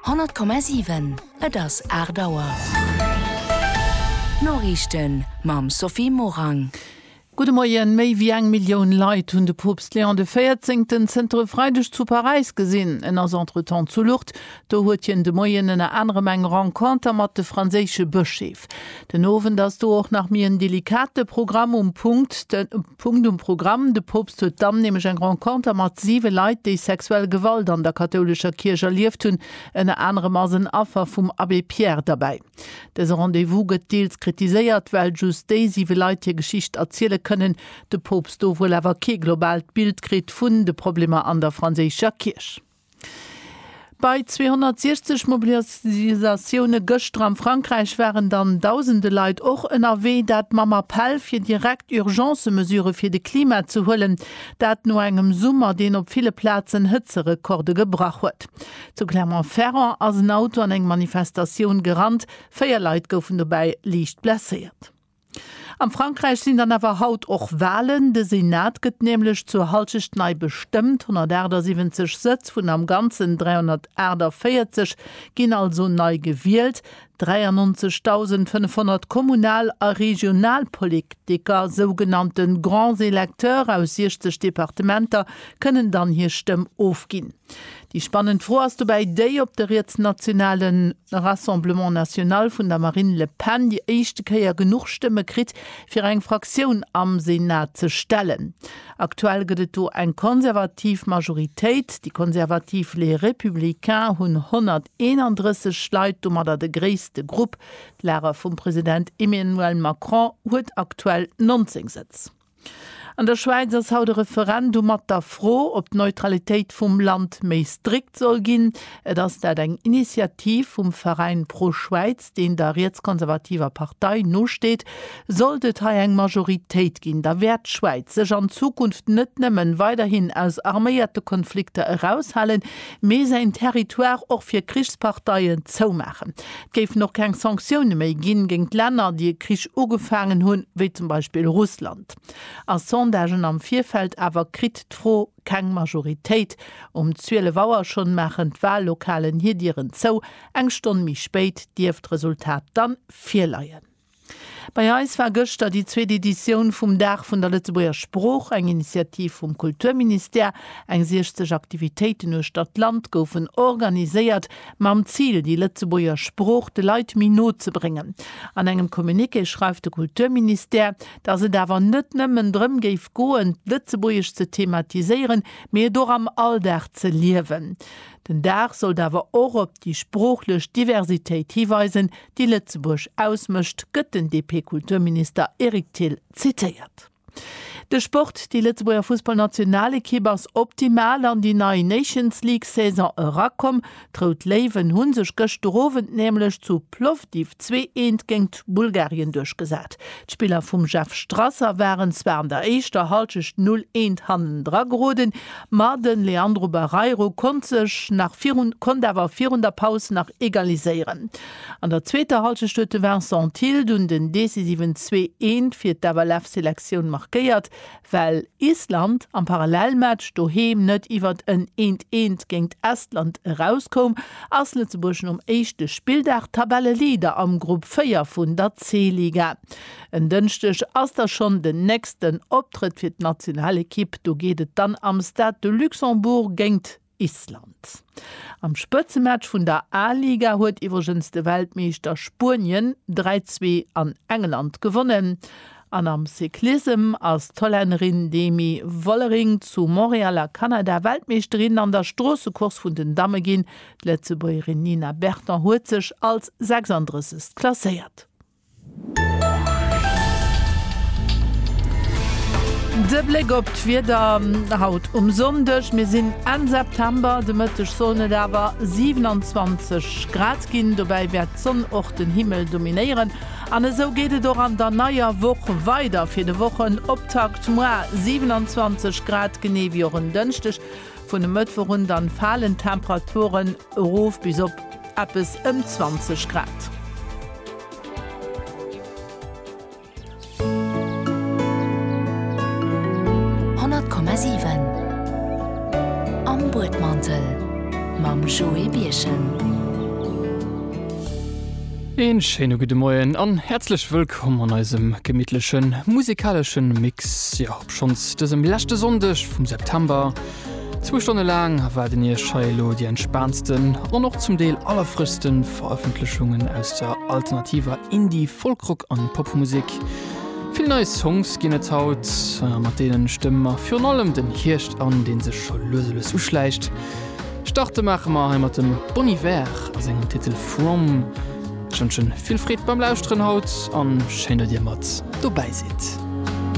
100,7 Et ass 8 Auer. D'Noriichten mam Sophie Morang. Gudde Moien. Méi wéi eng Millioun Leit hunn de Poopst Léon de Véierzéngten zënter e Freideg zu Paräis gesinn. En ass entretemps zu Lourdes. Do huet hien de Moien ënner anerem eng Renconter mat de franséische Bëscheef. Den Owend ass do och nach méi en delikate Programm um Punkt. Punkt um Programm. De Poopst huet dann nämlech eng Renconter mat 7 Leit, déi sexuell Gewalt an der kathoulescher Kierch erlieft hunn. Ënner anerem ass en Affer vum Abbé Pierre derbäi. Dëse Rendez-vous gëtt deels kritiséiert, well just déi 7 Leit hir Geschicht erziele kënnen, de Poopst do wuel awer kee globaalt Bild kritt vun de Problemer an der franséischer Kierch. Bei 260 Mobilisatioune gëschter am Frankräich waren dann dausende Leit och ënnerwee, dat mam Appell fir direkt Urgence-Mesurë fir de Klima ze huelen. Dat no engem Summer, deen op ville Plazen Hëtzerekorde gebrach huet. Zu Clermont-Ferrand ass en Auto an eng Manifestatioun gerannt, véier Leit goufen dobäi liicht blesséiert. Am Frankräich sinn dann awer haut och Walen. De Senat gëtt nämlech zur Hallschecht nei bestëmmt. 178 Sëtz vun am Ganzen 348 ginn also nei gewielt. 93.500 Kommunal a Regionalpoliktiker, sougenannte Grands électeurs, aus 60 Departementer kënnen dann hir Stëmm ofginn. Déi spannend Fro ass dobäi déi, ob de rietsnationalen. De Rassemblement National vun der Marine Le Pen déi éischte Kéier genuch Stëmme kritt, fir eng Fraktioun am Senat ze stellen. Aktuell gëtt et do eng konservativ Majoritéit. Déi konservativ Les Républicains hunn 131 Leit, domadder de gréisste Grupp. D'Lager vum President Emmanuel Macron huet aktuell 19 Sëtz. An der Schwäiz ass haut e Referendum mat der Fro, ob d'Neutralitéit vum Land méi strikt soll ginn. Et ass dat eng Initiativ vum Veräin ProSchwäiz, deen der rietskonservativer Partei nosteet. Sollt et hei eng Majoritéit ginn, da wäert d'Schwäiz sech an Zukunft net nëmmen weiderhin aus arméierte Konflikter eraushalen, mee säin Territoire och fir Krichsparteien zoumaachen. Et géifen och keng Sanktioune méi ginn géingt Länner, déi e Krich ugefaangen hunn, wéi zum Beispill Russland. A Sondagen am Virfeld awer kritt d'Fro keng Majoritéit. Um 12 Auer schonn maachen d'Wahllokalen hir Dieren zou. Eng Stonn méi spéit dierft d'Resultat dann virleien. Bei eis war gëschter déi zweet Editioun vum Dag vun der Lëtzebuerger Sprooch, eng Initiativ vum Kulturministère. Eng 60 Aktivitéiten uechter d'Land goufen organiséiert, mam Zil, déi Lëtzebuerger Sprooch de Leit méi no ze bréngen. An engem Communiqué schreift de Kulturministère, datt et awer net nëmmen drëm géif goen, d'Lëtzebuergesch ze thematiséieren, mee et och am Alldag ze liewen. Den Dag sollt awer och op. déi sproochlech Diversitéit hiweisen, déi Lëtzebuerg ausmécht, gëtt den DP-Kulturminister Eric Thill zitéiert. De Sport, Déi Lëtzebuerger Fussballnationalekipp ass optimal an déi nei Nations League-Saison erakomm. D'Rout Léiwen hu sech gëschter Owend nämlech zu Plovdiv zwee eent géingt Bulgarien duerchgesat. D'Spiller vum Jeff Strasser waren zwar an der éischter Hallschecht 0 eent hannendra geroden, Ma den Leandro Barreiro konnt sech nach virun konnt awer virun der Paus nach egaliséieren. An der zweeter Halschecht huet de Vincent Thill dunn den decisiven Zwee eent fir d'FLF Selektioun markéiert, well Island am Parallelmatch doheem net iwwert en eent eent géingt Estland erauskoum, ass Lëtzebuerg nom éischte Spilldag Tabelleleader am Grupp 4 vun der C-Liga. En Dënschdeg ass da schonn den nächsten Optrëtt fir d'Nationalekipp. Do geet et dann am Stade de Luxembourg géint Island. Am Spëtzematch vun der A-Liga huet iwwregens de Weltmeeschter Spuenien 3, 2 an England gewonnen. An am Cyclissem ass d'Hollännerin Demi Vollering zu Montréal a Kanada Weltmeeschterin an der Stroossecourse vun den Damme ginn. D'Lëtzebuergerin Nina Berton huet sech als 36. klasséiert. De Bléck op d'Wieder haut um Sonndeg, Mir sinn Enn September, de Mëtteg sollen et awer 27 Grad ginn. Dobäi wäert d'Sonn och den Himmel dominéieren. An esou geet et och an der neier Woch weider. Fir de Wochenoptakt muer 27 Grad, genee wéi och en Dënschdeg. Vun e Mëttwoch un dann falen d'Temperaturen erof bis op eppes ëm 20 Grad. Een schéine gudde Moien an häerzlech wëllkomm an eisem gemittlechen musikaleschen Mix. Jo, Schonns dësem leschte Sonndeg vum September, zwou Stonne laang, waarden Iech hei elo déi entspaantsten an och zum Deel allerfrëschste Verëffentlechungen aus der alternativer Indie-, Folk-Rock an Popmusek. Vill nei Songs ginn et haut, mat deenen stëmme mer virun allem den Hierscht an, dee sech scho lues a lues uschläicht. Starte maache mer hei mat dem Bon Iver a sengem Titel From. Ech wënschen vill Freed beim Lauschteren haut an schéin, datt Dir mat dobäi sidd.